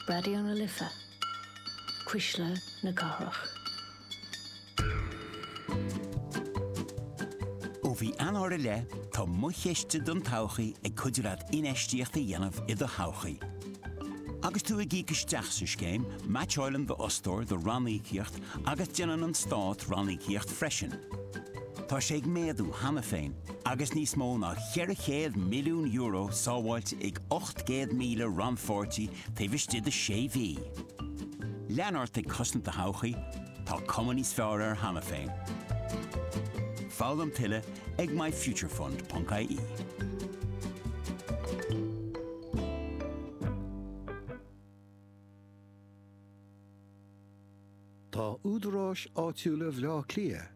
Raidió na Life, Cuisle na Cathrach. Ó mhí Eanáir i leith, tá Mo Chiste don Todhchaí ag cuidiú leat infheistíocht a dhéanamh i do thodhchaí. Agus tú ag íoc isteach sa scéim, meaitseáileann d'fhostóir do ranníocaíocht agus déanann an Stát ranníocaíocht freisin. Tá sé ag méadú cheana féin agus níos mó ná €400 milliún sábháilte ag 800,000 rannpháirtí taobh istigh de sé mhí. Lean ort ag cosaint a todhchaí, tá cuma níos fearr air cheana féin. Foghlaim tuilleadh ag MyFutureFund.ie. Tá údaráis áitiúla Bhleá Cliath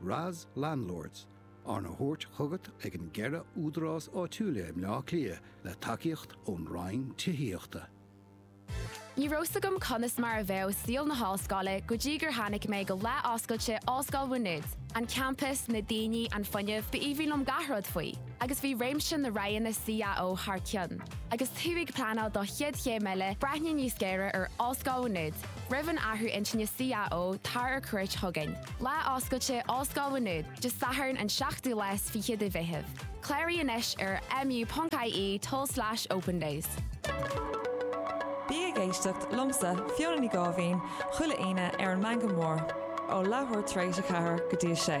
RAS Landlords, arna thabhairt chugat ag an gceithre údarás áitiúila i mBleá Cliath le tacaíocht ón Roinn Tithíochta. Ní raibh 's agam conas mar a bheadh saol na hollscoile go dtí gur tháinig mé go lá oscailte Ollscoil Mhá Nuad. An campas, na daoine, an fuinneamh, b'aoibhinn liom gach rud faoi. Agus bhí réimse na roghanna CAO thar cionn. Agus tú ag pleanáil do chéad chéim eile, breathnaigh níos géire ar Ollscoil Mhá Nuad. Roimh an athrú intinne CAO, tar ar cuairt chugainn. Lá oscailte Ollscoil Mhá Nuad, Dé Sathairn an 7ú lá is fiche de Mheitheamh. Cláraigh anois ar mu.ie tulslais opendays. Bí ag éisteacht liomsa, Fiona Ní Dháibhín, chuile Aoine ar an Meangadh Mór, ó leathuair tar éis a ceathair go dtí a sé.